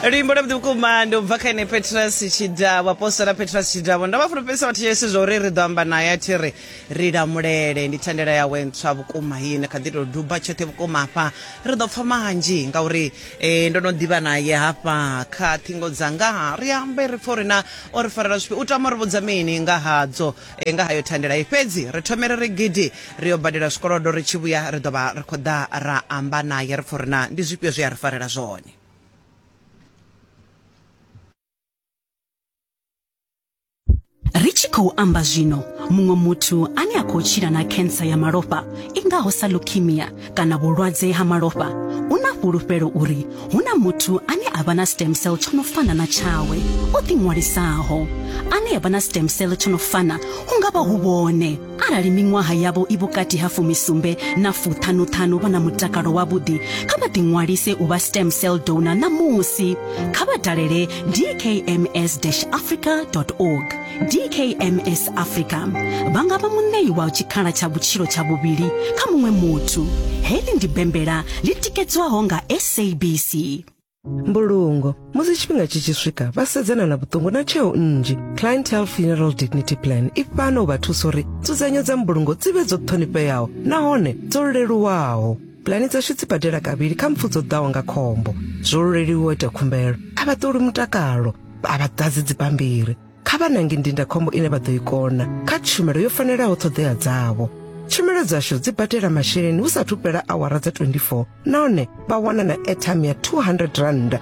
luimbo lwavhuḓi vhukuma ndi u bva kha ene petras tshidavho apostola petras tshidavho ndo vha fulufhedzisa vhathu yesu zwa uri ri ḓo amba naye a thi ri ri lamulele ndi thandela yawe ntswa vhukuma yi ne kha ḓi tou duba tshoṱhe vhukuma hafha ri ḓo pfa manzhi ngauri eh, ndo no ḓivha naye hafha kha ṱhingo dzanga ri ambe ri pfa uri na o ri farela zwifhi u tama ri vhudza mini nga hadzo E, nga hayo thandela i fhedzi ri thome ri ri gidi ri yo badela zwikolodo ri tshi vhuya ri ḓo vha ri khou ḓa ra amba naye ri pfa uri na ndi zwifhio zwi a ri farela zwone ri tshi khou amba zwino muṅwe muthu ane a khou tshila na khensa ya malofha i ngaho sa leukemia kana vhulwadze ha malofha u na fhulufhelo uri hu na muthu ane a vha na stem cell tsho no fana na tshawe o ḓiṅwalisaho ane a vha na stem cell tsho no fana hu nga vha hu vhone arali miṅwaha yavho i vhukati ha fumisumbe na fuṱhanuṱhanu vha na mutakalo wavhuḓi kha vha ḓiṅwalise u vha stem cell donor ṋamusi kha vha dalele dkms-africa org dkms africa vha nga vha muṋei wa tshikhala tsha vhutshilo tsha vhuvhili kha muṅwe muthu heḽi ndi bembela ḽi tikedzwaho nga sabc mbulungo musi tshifhinga tshi tshi swika vha sedzana na vhuṱungu na tsheo nnzhi clientele funeral dignity plan i fhano u vha thusa uri nzudzanyo dza mbulungo dzi vhe dzo ṱhonifheaho nahone dzo leluwaho pulani dzashu dzi badela kavhili kha mpfu dzo ḓaho nga khombo zwo luleliwa ita khumbelo a vha ṱoli mutakalo a vha ḓadzi dzibammbiri kha vha nange ndindakhombo ine vha ḓo i kona kha tshumelo yo fanelaho ṱhoḓea dzavho tshumelo dzashu dzi badela masheleni hu sathu fhela awara dza 24 nahone vha wana na airtime ya 200 rand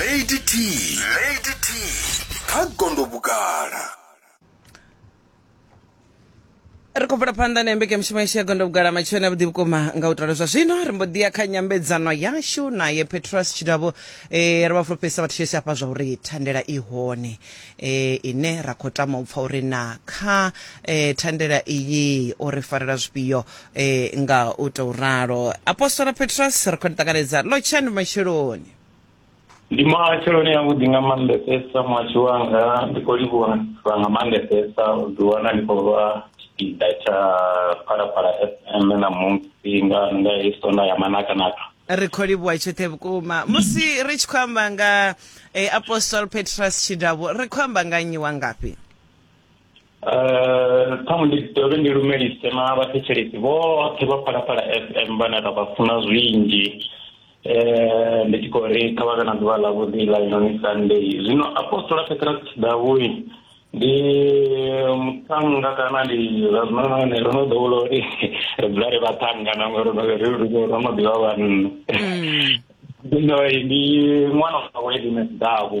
lady t lady t kha gondo vhugala ri khou bvela phanḓa na mbekanyamushumo yashu ya gondo vhugala matshoni a vhuḓi vhukuma nga u tala zwa zwino ri mbo ḓi ya kha nyambedzano yashu naye petros tshidavho eh, ri vha fulufhedzisa vhathu sheshe hafha zwa uri thandela i hone eh, ine ra khou tama u pfa uri na kha eh, thandela iyi o ri farela zwifhio e, nga u tou ralo apostola petros ri khou ni ṱanganedza lotshani matsheloni ndi matsheloni avhuḓi nga maanḓesesa muhashi wanga ndi khou livhuwa nga maanḓesesa u ḓiwana ndi khou vha tshipiḓa tsha phalaphala fm ṋamusi nga nga hei sonda ya manakanaka ri khou livhuwa tshoṱhe vhukuma musi ri tshi khou amba nga e, apostol petros tshidavhu ri khou amba nga nnyi wa ngafhi ṱhaṅwe ndi dovhe ndi lumelise na vhathetshelesi vhoṱhe vha phalaphala f m vhane ra vha funa zwinzhi um ndi tshi khou ri kha vha vhe na ḓuvha ḽavhuḓi ḽa inoni sunday zwino apostola petrus tshidavhui ndi muṱhannga kana ndi zwa zwinonone ro no ḓowela uri ri dzula ri vhaṱhannga na ngori ro no ḓivha vhanna zwino ndi ṅwana wawe edines davu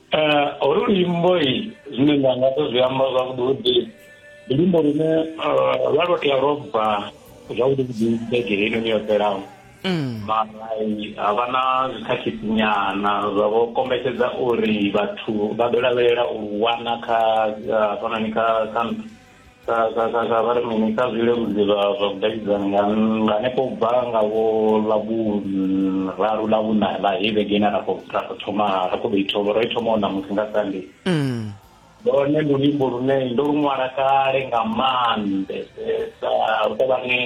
Eh, holu luimbo i zwine nda nga to zwi amba zwavhuḓi ndi luimbo lune eh, lwa lwo tea lwo bva zwavhuḓi vhuḓi vhege heinoni yo fhelaho mm. mara ha vha na zwikhakhitsinyana zwa vho kombetshedza uri vhathu vha ḓo lavhelela u wana kha eh, fanani kha kha vha ri mini kha zwileludzi zwa vhudavhidzani nga hanefho u bva nga vho ḽa vhuraru ḽa vhuna ḽa hei vhege ine ra khou thoma ra khou ḓo i thoma ro i thoma u ṋamusi nga sande lone ndi luimbo lune ndo lu ṅwala kale nga maanḓesesa u tou vha ni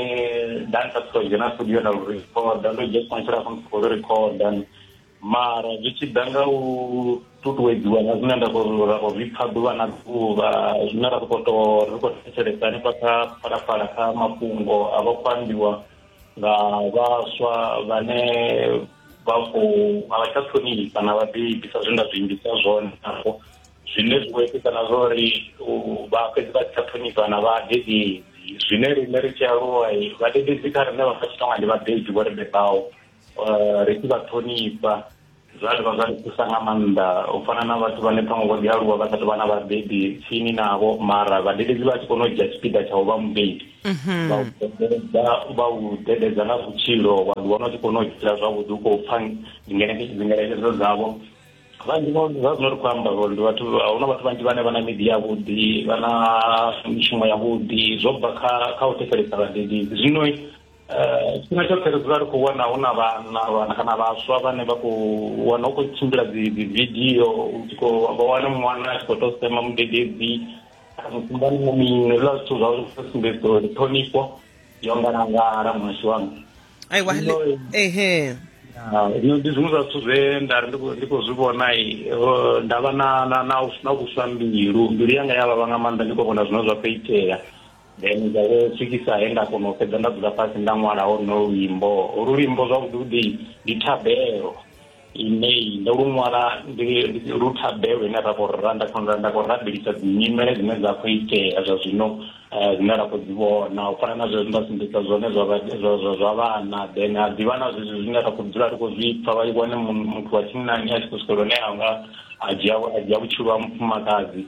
dansa siko dzhena studio na lu rikhoda ndo dzhia tshifhinga tshilapfu ndi khou lu rikhoda mara zwi tshi ḓa nga u ṱuṱuwedziwa nga zwine nda khou ra khou zwi pfa ḓuvha na ḓuvha zwine ra khou to ri khou thetshelesa hanefha kha phalaphala kha mafhungo a vha khou ambiwa nga vhaswa vhane vha khou a vha tsha ṱhonifha na vhabebi sa zwe nda zwi imbisa zwone nafho zwine zwi khou itisa na zwa uri vha fhedzi vha si tsha ṱhonifha na vhadededzi zwine riṋe ri tshi aluwa vhadededzi kha riṋe vha pfa tshi tonga ndi vhabebi vho ri bebaho eh, ri tshi vha ṱhonifha zwa dovha zwa ri thusa nga maanḓa u fana na vhathu vhane ṱhaṅwe vho ḓi aluwa vha sa tou vha na vhabebi tsini navho mara vhadededzi vha tshi kona u dzhia tshipiḓa tsha u vha mubebi mhm. vha u dededza nga vhutshilo wa ḓi wana u tshi kona u tshila zwavhuḓi u khou pfa dzingeletshedzo dzavho vhanzhi zwa zwino ri khou amba uri ndi vhathu a huna vhathu vhanzhi vhane vha na midi yavhuḓi vha na mishumo yavhuḓi zwo bva kha kha u thetshelesa vhadededzi zwino tshifhinga tshoṱhe ri dzula ri khou wana hu na vhana kana vhaswa vhane vha khou wana hu khou tshimbila dzividio vha wane ṅwana a tshi khou tou sema mudededzi mukumbani mu mini hezwiḽa zwithu zwa uri zwi sumbedza uri ṱhonifho yo ngalangala muhashi wanga aiwa ehe zwino ndi zwiṅwe zwa zwithu zwe nda ri ndi khou zwi vhona nda vha na na na na vhuswa mbilu mbilu yanga ya vhavha nga maanḓa ndi khou vhona zwine zwa khou itea Then zwa vho swikisa he nda kona u fhedza nda dzula fhasi nda ṅwala hono luimbo holu luimbo zwavhuḓi vhuḓi ndi thabelo ine ndo lu ṅwala ndi lu thabelo ine ra khou ra nda khou nda khou rabelisa dzi nyimele dzine dza khou itea zwa zwino eh, dzine ra khou dzi vhona u fana na zwezwi nda sumbedza zwone zwa vhana then a ḓivha na zwezwi zwine ra khou dzula ri khou zwi pfa vha wane muthu wa tshinnani a tshi khou swikela hune anga a dzhia a dzhia vhutshilo ha mufumakadzi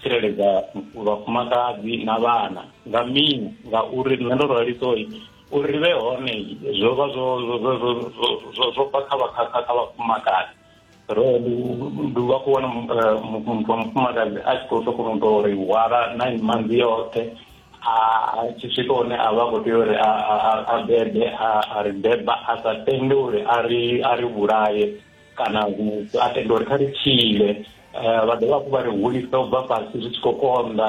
tsireledza vhafumakadzi na vhana nga mini ngauri nṋe ndo ralisa uri uri ri vhe hone zwo vha zwo zwo bva kha vhakhakha kha vhafumakadzi ro ndi vha khou wana eh, muthu wa mufumakadzi a tshi khou tou kona u tou ri hwala na manzi yoṱhe a tshi swika hone a vha khou tea uri a bebe a ri beba a sa tende uri a ri vhulaye kana a tenda uri kha ri tshile eh, vha dovha hafhu vha ri hulisa u bva fhasi zwi tshi khou konḓa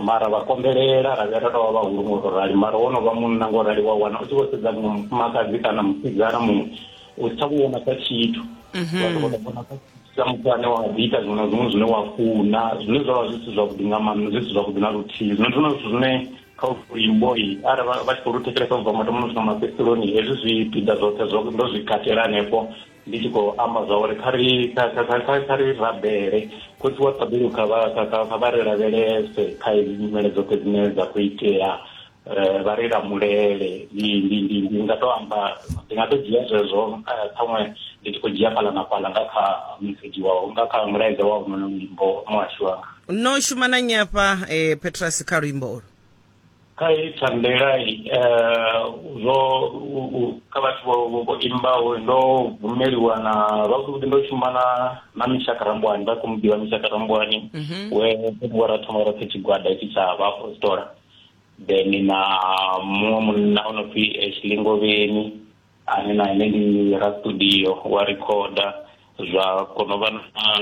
mara vha konḓelela ra vhuya ra tou vha vhahulu ngo to rali mara wo no vha munna ngo rali wa wana u tshi vho sedza muṅwe mufumakadzi kana musidzana muṅwe u si tsha mu vhona sa tshithu mhm. vhathu vho to vhona sa tshithu sa muthu ane wa ḓi ita zwiṅwe na zwiṅwe zwine wa funa zwine zwa vha zwi si zwavhuḓi nga maanḓa zwi si zwavhuḓi na luthihi zwino ndi zwone zwithu zwine kha uyu mboi ara vha tshi khou lu thetshelesa u bva mathomoni u swika mafhedzisironi hezwi zwipiḓa zwoṱhe zwo ndo zwi katela hanefho ndi tshi khou amba zwa uri kha ri kha ri rabele khotsi wa ṱabeli kha vha ri lavhelese kha hedzi nyimele dzoṱhe dzine dza khou itea um vha ri lamulele ndi nga to amba ndi nga to dzhia zwezwo eh, ṱhaṅwe ndi tshi khou dzhia fhaḽa na fhaḽa nga kha mesedzhi wao nga kha mulaedza wa honono muimbo muhashu wanga no shuma na nnyi afha eh, petrus kha luimbo ulu kha heyi thandelayi um zwo u- u- kha vhathu vho- vho vho imbaho ndo bvumeliwa na zwavhuḓivhuḓi ndo shuma na na mishaka rambwani vha khou mu ḓivha mishaka rambwani we wa ra thoma roṱhe tshigwada itshi tsha vhaapostola then na muṅwe munna o no pfi eshilingovheni ane na ene ndi ra studio wa rikhoda zwa kono vha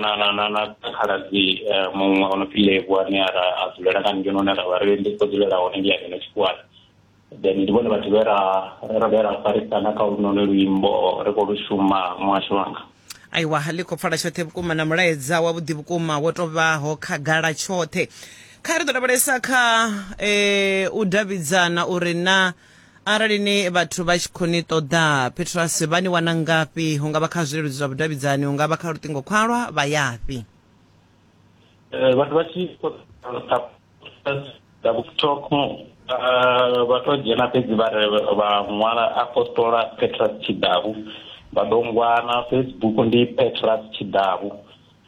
na na na na khaladzi eh, muṅwe ono pfi levu ane a ra a dzulela nga ngeno ne ra vha ri ndi khou dzulela hone ndi ya ngeno tshikhuwani then ndi vhone vhathu vhe ra ra vhe ra farisana kha lunone luimbo ri khou lu shuma muhasho wanga aiwa ḽi khou pfala tshoṱhe vhukuma na mulaedza wa vhuḓi vhukuma wo tovhaho khagala tshoṱhe kha ri ḓo lavhelesa kha um u davhidzana uri na arali ni vhathu vha tshi khou ni ṱoḓa petrasi vha ni wana ngafhi hu nga vha kha zwileludzi zwa vhudavhidzani hu nga vha kha luṱingo khwalwa vha yafhi eh, vhathu vha tshi tiktok eh, vha to dzhena fhedzi vha vha ṅwala apostola petras tshidavu vha ḓo ngwana facebook ndi petras tshidavu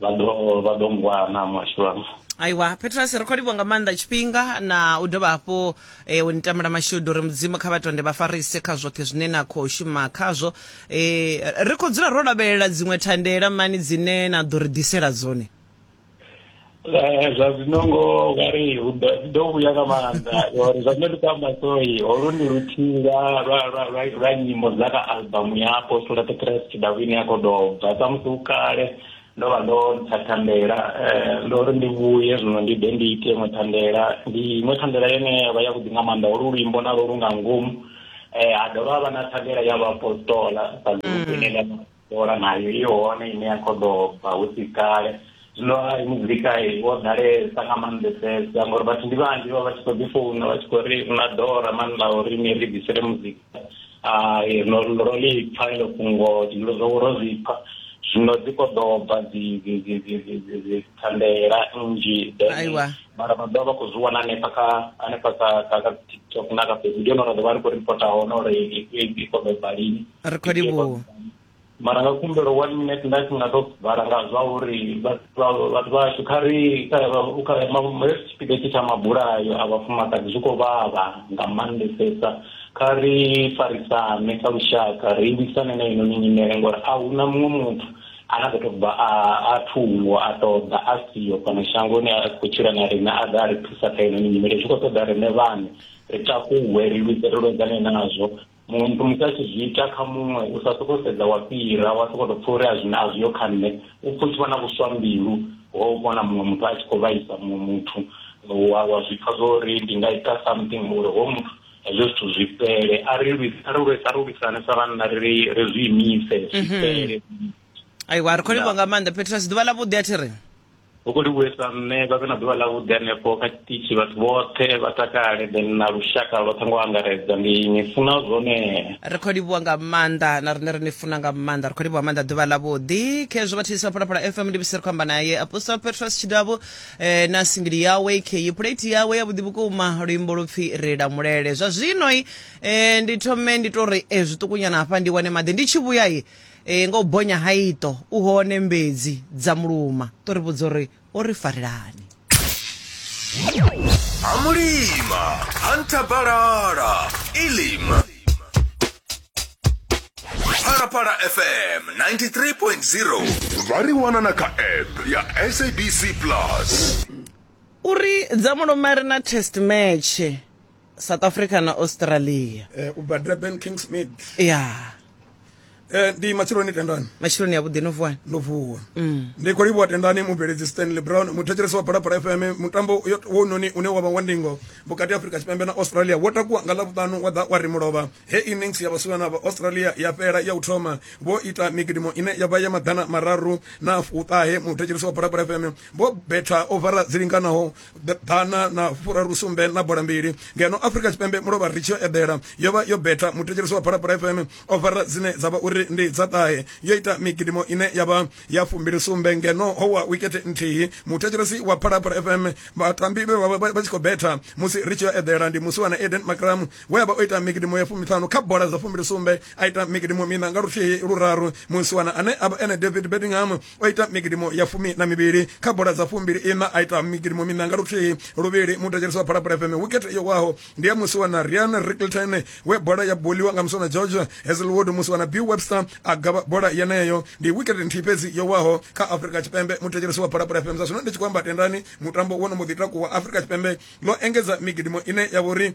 vha ḓo vha ḓo ngwana muhasho wanga aiwa petrus ri khou livho nga maanḓa tshifhinga na u dovha hafhu eh, u ni tamela mashudu uri mudzimu kha vhatonde vha farise kha zwoṱhe zwine na khou shuma khazwo eh, ri khou dzula ro lavhelela dziṅwe thandela mani dzine na ḓo ri ḓisela dzone Eh, zwa zwino ngo vhari hu ḓo- dzi ḓo vhuya nga maanḓa uri zwa zwino ndi khou amba soi holu ndi luthihi lwa lwa- lwa- lwa- lwa nyimbo dza kha albamu ya apostola petrus tshidavhini ya khou doba samusi hu kale ndo vha ndo ntsha thandela um ndo ri ndi vhuye zwino ndi ḓe ndi ite iṅwe thandela ndi iṅwe thandela yone ya vha yavhuḓi nga maanḓa olu luimbo na lwo lu nga ngomu um ha dovha ha vha na thandela ya vhaapostola sa ḽiuku ine ḽa apostola nayo i hone ine ya khou doba hu si kale zwino a muzika wo ḓalesa nga maanḓesesa ngauri vhathu ndi vhanzhi vha vha tshi khou ḓi founa vha tshi khou ri na dora mani ḽa uri ni ri ḓisele muzika no ro ḽi pfa ilo fhungo zwilo zwo ro zwi pfa zwino dzi khou ḓo bva dzithandela nnzhi then mara vha ḓovha vha khou zwi wana hanefha kha hanefha kha kha kha tiktok na kha facebook ndi hone ra ḓo vha ri khou ripota hone uri i khou ḓo bva lini mara nga khumbelo one minute nda tshi nga to vhala nga zwa uri vhathu vhashu kha ri hesi tshipiḓa tshi tsha mabulayo a vhafumakadzi zwi khou vhavha nga maanḓesesa kha ri farisane kha lushaka ri lwisane na inoni nyimele ngori a hu na muṅwe muthu ane a ḓo tou bva a thungo a ṱoḓa a siho fhano shangoni a khou tshila na riṋe a ḓa a ri thusa kha inoni nyimele zwi khou ṱoḓa riṋe vhane ri takuwe ri lwise ri lwedzane nazwo muthu musi a tshi zwi ita kha muṅwe u sa sokou sedza wa fhira wa sokou tou pfha uri a zwine a zwi yo kha nṋe u pfha u tshi vha na vhuswa mbilu ho u vhona muṅwe muthu a tshi khou vhaisa muṅwe muthu wa wa zwi pfha zwo uri ndi nga ita something uri ho muthu hezwo zwithu zwi fhele a ri lwisa ri lwisa ri lwisane sa vhanna ri ri zwi imise zwi mhm. fhele aiwa ri khou livha nga maanḓa petrus ḓuvha ḽa vhuḓi a thi ri hu khou livhuwesa nṋe vha vhe na ḓuvha ḽavhuḓi hanefho kha tshiṱitshi vhathu vhoṱhe vha takale then na lushaka lwoṱhe ngo angaredza ndi ni funa zwone ri khou livhuwa nga maanḓa na rine ri ni funa nga maanḓa ri khou livhuwa maanḓa ḓuvha ḽa vhuḓi khezwo vha thisa phalaphala fm ndi bisi ri khou amba naye apostle petros tshidavhu eh, na singili yawe kheyi pulate yawe ya vhuḓi vhukuma luimbo lupfi ri lamulele zwa zwinoi eh, ndi thome ndi to ri eh, zwiṱukunyana hafha ndi wane maḓi ndi tshi vhuya i e, nga u bonya ha iṱo u hone mbedzi dza muluma to ri vhudza uri o ri farelani a mulima a nthabalala ilima phalaphala fm 93.0 vha ri wana na kha app ya sabc plus uri dza muluma ri na test match south africa na australia eh, u bva durban king smith ya eh, ndi matshiloni tendani matshiloni ya vhuḓi no vuwani ndo vuwa mm. ndi khou livhuwa tendani mubveledzi stanley brown muthetshelesi wa phalaphala fm mutambo wononi une wa vha wa ndingo vhukati ha afrika tshipembe na australia wo takuwa nga ḽavhuṱanu wa ḓa wa ri mulovha he innings ya vhasiwana vha australia ya fhela ya u thoma vho ita migidimo ine ya vha ya maḓana mararu na fuṱahe muthetshelisi wa bhorabhora fm vho betha ovara dzi linganaho ḓana na furaru sumbe na bola mbili ngeno afrika tshipembe mulovha ri tshi yo eḓela yo vha yo betha muthetshelisi wa bhorabhora fm ovara dzine dza vha uri ndi dza ṱahe yo ita migidimo ine ya vha ya fumbili sumbe ngeno ho wa wikete nthihi muthetshelesi wa bhorabhora fm vhatambi vhe vha tshi khou betha musi ri tshi yo eḓela ndi musiwana eden macram we a vha o ita mikidimo ya fumiṱhanu kha bola dza fumbili sumbe a ita mikidimo mina nga luthihi luraru musiwana ane a vha ene david bedingham o ita mikidimo ya fumi na mivhili kha bola dza fumbili ina a ita mikidimo mina nga luthihi luvhili mutetshelisi wa phalaphala fm wicket yo waho ndi ya musiwana rian rickelton we bola ya boliwa nga musiwana george hazelwood musiwana b webster a gavha bola yeneyo ndi wicket nthihi fhedzi yo waho kha afrika tshipembe mutetshelisi wa phalaphala fm zwa zwino ndi tshi khou amba tendani mutambo wo no mbo ḓi takuwa afrika tshipembe ḽo engedza mikidimo ine ya vha uri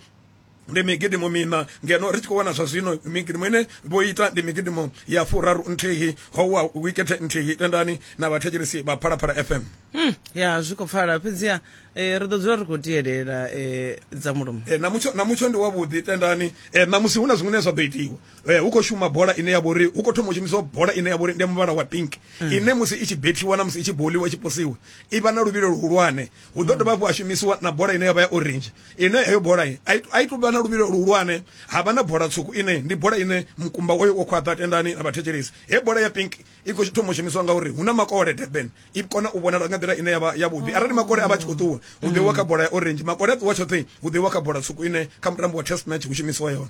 ndi migidimo mina ngeno ri tshi khou wana zwa zwino migidimo ine vho ita ndi migidimo ya furaru nthihi howa wikethe nthihi tendani na vhathetshelesi vha phalaphala fm mm, ya zwi khou pfala fhedziha eh, ri ḓo dzula ri khou tielela eh, dza mulomo eh, na mutsho na mutsho ndi wavhuḓi tendani eh, na musi hu na zwiṅwe zwa ḓo itiwa eh, hu khou shuma bola ine ya vha uri hu khou thoma u shumisiwa bola ine ya vha uri ndi muvhala wa pink mm. ine musi i tshi bethiwa na musi i tshi boliwa i tshi posiwa i vha na luvhilo luhulwane hu ḓo dovha hafhu ha shumisiwa na bola ine yavha ya orange ine heyo bola a i tou vha na luvhilo luhulwane ha vha na bola tswuku ine ndi bola ine mukumba wayo wo khwaṱha tendani na vhathetshelesi he bola ya pink i khou thoma u shumiswa ngauri hu na makole durban i kona u vhonala nga nḓila ine yavha yavhuḓi arali makole a vha tshi khou ṱuwa hu ḓiwa kha bola ya orange makole a ṱuwa tshoṱhe hu ḓiwa kha bola tswuku ine kha mutambo wa test match hu shumisiwa yone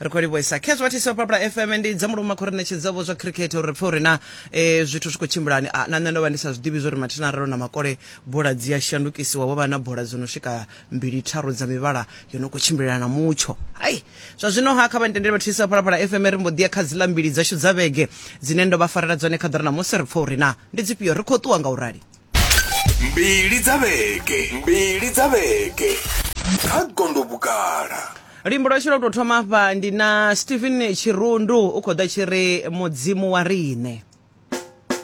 ri khou livhuesa khezwo athisi wa papula fm ndi dza muluma khou ri ṋetshedzavho zwa khirikhethe uri ri pfe uri na eh, zwithu zwi khou tshimbulani Ah, na nṋe ndo vha ndi sa zwi ḓivhi zwori mathina aralo na makole bola dzi a shandukisiwa wo vha na bola dzo no swika mbili tharu dza mivhala yo no khou tshimbilelana na mutsho hai zwa zwino ha kha vha ntendele vhathisi wa phalaphala fm ri mbo ḓi ya kha dziḽa mbili dzashu dza vhege dzine ndo vha farela dzone kha ḓira na musi ri pfe uri na ndi dzifhio ri khou ṱuwa nga u rali mbili dza vhege mbili dza vhege kha gondo vhugala luimbo lwashu lwa u tou thoma afha ndi na stephen tshirundu u khou ḓa tshi ri mudzimu wa riṋe